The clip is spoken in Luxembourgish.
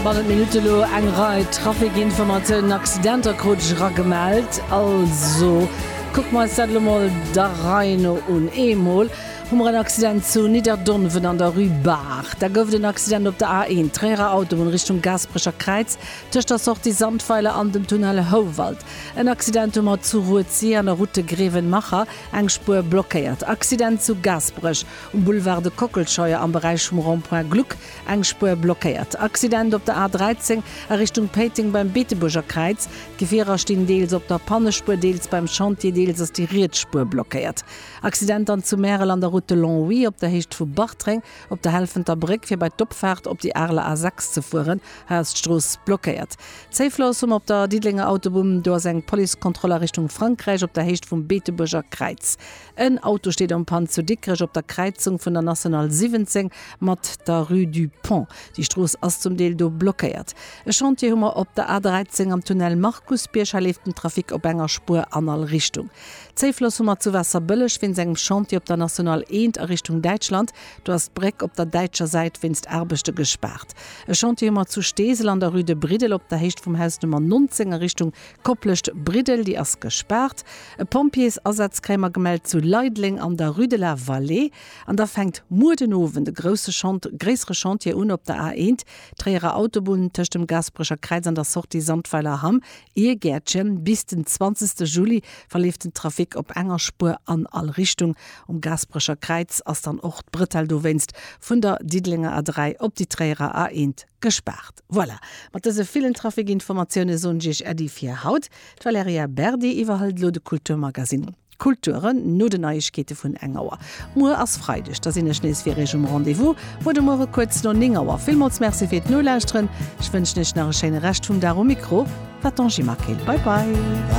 Bannent Minutte elo eng Rei Trafikinformatiounen, Accidenter krut ech era gemellt. Also kucke mer eis dat elo mol der Rei no un. Eemol hu mer en Accident zu Nidderdonwen an der Rue Baach. Da gouf et en Accident op der A1, Tréierer Autobunn, Richtung Gaasperecher Kräiz, tëscht der Sortie Sandweiler an dem Tunnel Houwald. En Accident hu mer zu Rued-Sir an der Route de Grevenmacher, eng Spuer blockéiert. Accident zu Gaasperech um Boulevard de Kockelscheuer am Beräich vum Rond-Point Gluck. Eng Spuer blockéiert. Accident op der A13 a Richtung Péiteng beim Beetebuerger Kräiz. D'Gefierer stinn deels op der Pannespuer, deels beim Chantier, deels ass déi riets Spuer blockéiert. Accident dann zu Märel an der Route de Longwy op der Héicht vu Bartreng, op der Helfenter Bréck fir bei d'Opfaart op déi Areler A6 ze fueren. Hei ass d'Strooss blockéiert. Zéifloss um op der Diddelenger Autobumm, do ass eng Policekontroll a Richtung Frankräich op der Héicht vum Beetebuerger Kräiz. En Auto steet en panne zu Dikrech op der Kräizung vun der National 17 mat der Rue du Pont. Déi Strooss ass zum Deel do blockéiert. E Chantier hu mer op der A 13 am Tunnel Markusbierg. Hei leeft den Trafic op enger Spuer an all Richtung. Zéifloss hu mer zu Waasserbëlleg wéinst engem Chantier op der National 1 a Richtung Däitschland. Do ass d'Bréck op der däitscher Säit wéinst Aarbechte gespaart. E Chantier hu mer zu Steesel an der Rue de Briddel op der Héicht vum Haus Nummer 19 a Richtung D'Kopplecht Briddel, déi ass gespaart. E Pompjeesasaz kréie mer gemellt zu Leideleng an der Rue de la Vallée. An da fänkt muer den Owend e grousse Chant, gréissere Chantier un op der A 1, Tréierer Autobunn, tëscht dem Gaasperecher Kräiz an der Sortie Sandweiler Hamm, Iergäertchen. Bis den 20. Juli verleeft den Trafic op enger Spuer an all Richtung. Um Gaasperecher Kräiz ass dann och d'Bretelle dowéinst vun der Diddelenger A 3 op déi Tréierer A 1 gespaart. Voilà, mat dëse villen Trafikinformatiounen soen ech Iech Äddi fir haut. D'Valerija Berdi iwwerhëlt elo de Kulturmagasinn Kulturen no den Neiegkeete vun eng Auer. Muer ass Freideg, da sinn ech nees fir Iech um Rendez-vous. Muer de Muere kuerz no 9 Auer. Villmools Merci fir d'Nolauschteren. Ech wënschen Iech nach e schéine Rescht vum Dag um Mikro war d'Angie Maquil. Bye bye.